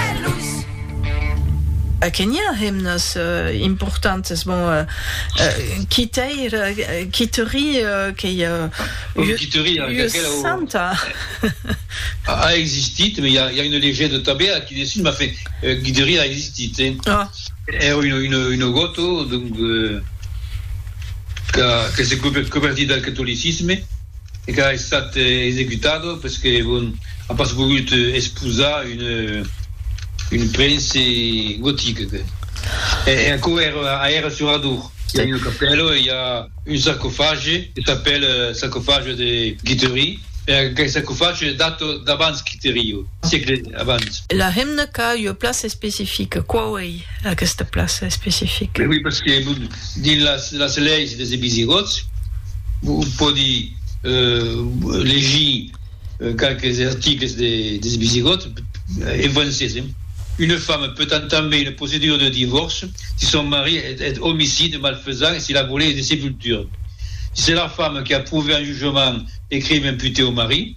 Cartelus. A Kenya hemnas importantes bon quitèir quiteri qu'ei ua santa a existit me i a una legenda tabé a quidessun ma fe guideri a existit è una goto donc que se coberti del catolicisme. e qu'a estat executada pes que bon a pas vogut esposar un un prince gotic que e e aquò èr a èra sur Adour i a una capèla e i a un sarcofage que s'apèl sarcofage de Guittery e aquel sarcofage data d'abans Guittery o siecle abans. La hemna qu'a ua plaça especifica, quauei? aquesta plaça especifica? Oui, parce que dins las las leis des Visigòts vos pòdi legir qualques articles de des Visigòts en francés, hein. Une femme peut entamer une procédure de divorce si son mari est homicide, malfaisant et s'il a volé des sépultures. Si c'est la femme qui a prouvé en jugement les crimes imputés au mari,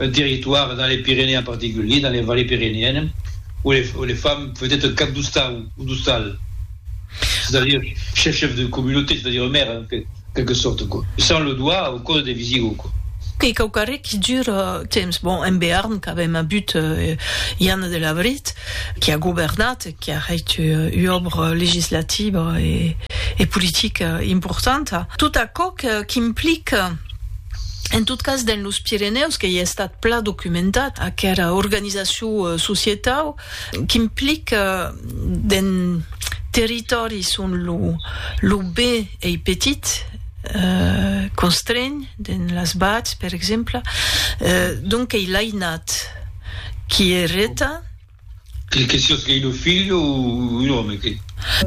un territoire dans les Pyrénées en particulier, dans les vallées pyrénéennes, où les, où les femmes faisaient un cap d'oustan ou d'oustal, c'est-à-dire chef, chef de communauté, c'est-à-dire maire, en fait, quelque sorte, quoi, sans le doigt au code des Visigoths, quoi. E quauquarre qui dure temps. Bon, en Béarn qu'avèm avut Ianne de Labrit, qui a governat, qui a hèit ua òbra legislativa e politica importanta, tot aquò qu'implique, En tot cas, dens los Pirenèus, qu'ei estat plan documentat aquera organizacion societau qu'implica dens territòris on lo B ei petit, constreny, dens las Bats, per exemple, donc ei l'ainat qui ereta, Que siás qu'ei ua filha o un òme, que.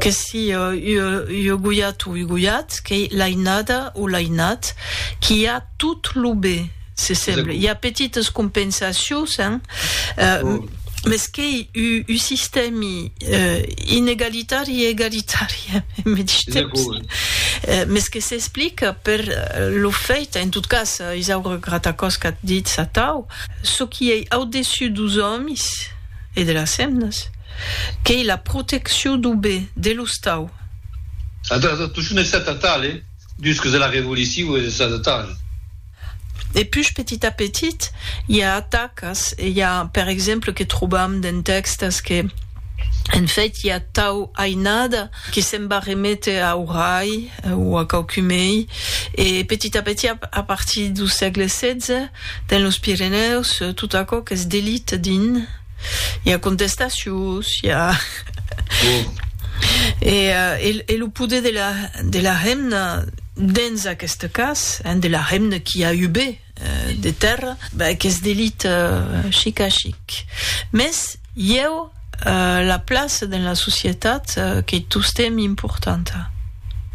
Que siá ua goiat o un goiat, qu'ei l'ainada o l'ainat, qu'i a tot lo be, se semble. I a petites compensacions, hein, mès qu'ei un sistèmi inegalitari e egalitari en medish temps. Mès que s'explica per lo fèit, en tot cas, Isaura Gratacòs, qu'at ditz atau, Çò qui ei au-dessus dos òmis e de las hemnas, qu'ei la proteccion dau be, de l'ostau. Adaptacion estatale dus que de la revolicion e de sa detalha. E pus petit a petit i a atacas e i a, per exemple, que trobam dens tèxtes que, en fait, i a tau ainada que se'n va reméter a Horaï o a quauqui mei e petit a petit a partir dau sègle xvi, Dins los Pirenèus, tot aquò qu'es d'elit dins, i a contestacions, i a... e lo poder de la de la hemna dins aqueste cas, hein, de la hemna qui a eu be de tèrra, ben qu'es d'elit chic a chic. Mès ieu, La plaça dens la societat qu'ei tostemp importanta.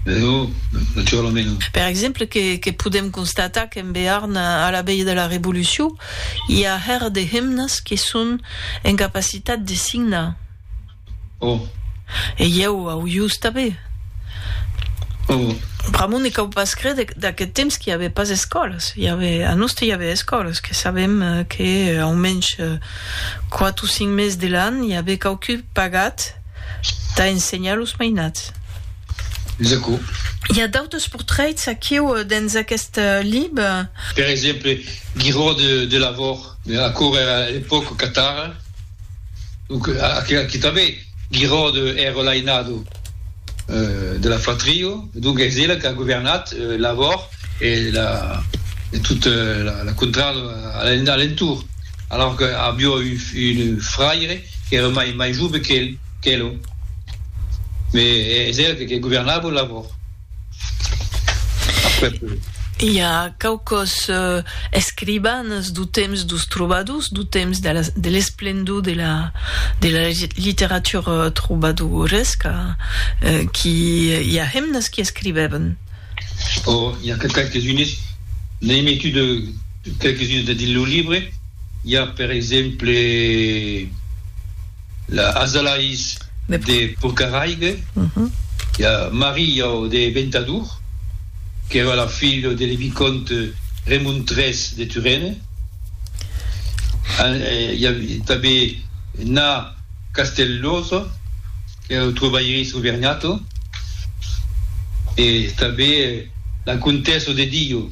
Lo naturalament. Per exemple, que podem constatar qu'en Bearn, a la veia de la Revolucion, i a hèr de hemnes que son en capacitat de signar. O. E ieu au ius tanben. O. Pr'amor ne cau pas créder d'aqueth temps qu'i avè pas escòlas. A Noste i avè escòlas, que sabem que, aumensh, Quat o cinc mes de l'an i aver quauqui pagat tà ensenhar los mainats. Es aquò. I a d'autres portraits aquiu dens aquest libre. Per exemple, Guiraud de Delavor. Aquò èra l'epòca catara. Donc, aquí tanben. Giraude ère l'ainado de la fratrio, donc es ela qu'a governat l'avòr e tot la contrada a l'entorn, alors que avió un fraire qu'ère mai jove qu'elo, mais es ela que governava l'avòr. I a quauquòs escrivanes dau temps dos trobadors, dau temps de l'esplendor de la literatura trobadoresca, qui i a hemnes qui escrivèven? Ò, i a que qualques unes, n'ai metut qualques unes dins lo libre, i a per exemple, La Azalais de Porcaraigue, la Maria de Ventadour, qu'èra la filha de le vicònte Remon tres de Turenne, i a tanben Na Castellosa, qu'èra lo trobaire Soverniato, e tanben la Contessa de Dio.